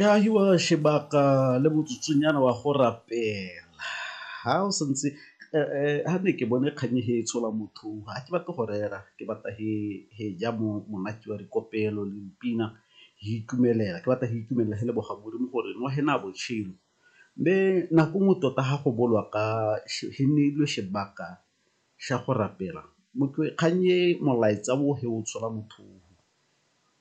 e agiwa sebaka le motsotsonyana wa go rapela ha o santse ha ne ke bone kgang e e tshola motho ha ke batle go rera ke batla he ja mo monate wa dikopelo le dipina ke itumelela ke batla ke itumelela he leboga modimo gore nwa he na botshelo. Mme nako nngwe tota ha go bolwa ka he neilwe sebaka sa go rapela kgang e molaetsa o he o tshola motho.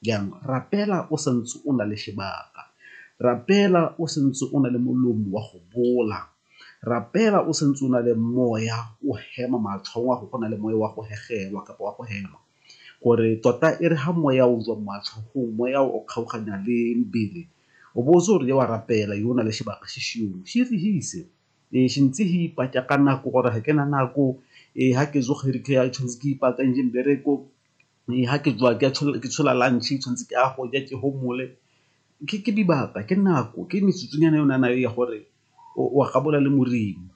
Jang? Rapela o sa ntse o na le sebaka. Rapela o sa ntse o na le molomo wa go bola. Rapela o sa ntse o na le moya o hema matlhong wa go go na le moya wa go hegelwa kapa wa go hema. Gore tota e re ha moya o jwa matlhogong, moya o kgaoganya le mbele, o bo o tse o re wa rapela yo o na le sebaka se seong. Se re hise. Ee, se ntse se ipatša ka nako gore ga ke na nako. Ee, ga ke tsoga re ke tshwanetse ke ipaakantše mbereko. Ee, ha ke tsoha ke tshola lunch tshwantse ke a go ja ke homole, ke dibaka ke nako ke metsotsonyana e o nang nayo ya gore wa gabola le Modimo.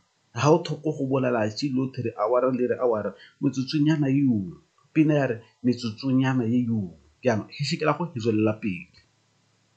Ha o tlhoko go bolela atšhe lotlhe re hour-a le re hour-a metsotsonyana eo, pina ya re metsotsonyana eo jaanong go tswelela pele.